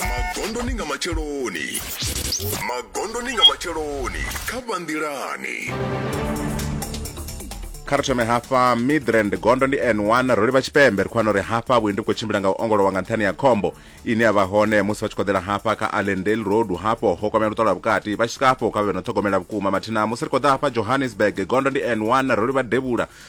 magondoni nga matsheloni magondoni nga matsheloni kha vhanḓilani kha ri thome hafha midrand gondo ndi n1 ro livha tshipembe ri khou wana uri hafha vhuendi vhu khou tshimbila nga u ongolowa nga nṱhani ya khombo ine ya vha hone musi vha tshi khoḓela hafha kha allendale road hafho ho kwamea luṱolo lwa vhukati vha tshi swika hafho kha vhe no ṱhogomela vhukuma mathina musi ri khou ḓa hafha johannesburg gondo ndi n1 ro livha devhula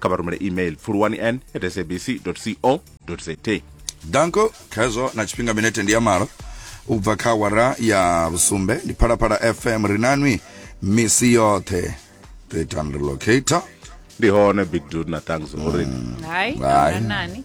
kha vha rumele email pfuluwani n at sabc co za danko khezwo na tshifhinga minete ndi ya malo u bva kha wara ya vhusumbe ndi phalaphala fm ri nanwi misi yoṱhe ṱetan relocator ndi hone big dude na thanks uri mm. hai nani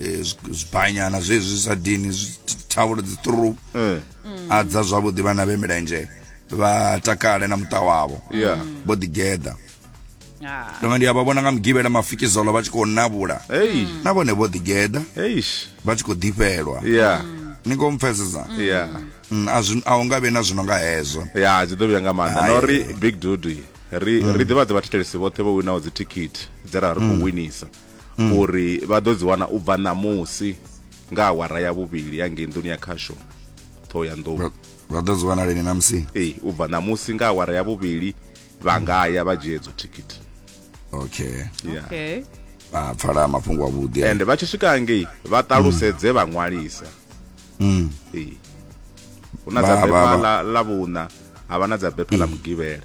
Eh, zwibanyana zwezwi zwi sa dini thavhulo dzi through eh. a dza zwavhuḓi vhana vhe milenzhe vha takale na muṱa wavho vho ḓigeḓa ah. tonga ndi a vha vhona nga mugivhela mafikizolo vha tshi khou navhula na vhone vho ḓigeḓa vha tshi khou ḓifhelwa ni khou mpfesesa mm, a u nga vhe na zwino nga hezwo ya dzi ḓo vhuya nga maanḓa na uri big dudu ri mm. ḓivhadze vhathetshelesi vhoṱhe vho winaho dzithikhithi dze ra ri khou mm. winisa mm. uri vha ḓo dzi wana u bva ṋamusi nga awara ya vhuvhili ya ngei nḓuni ya khasho ṱhoho ya nḓou vha ḓo dzi wana lini ṋamusi ee u bva ṋamusi nga awara ya vhuvhili vha nga ya vha dzhie dzo thikhithi okay yeah. okay a pfala mafhungo avhuḓi and vha tshi swika ngei vha ṱalusedze vha ṅwalisa mm. ee hu na dza bepha la vhuṋa ha vha na dza bepha ḽa mm. mugivhela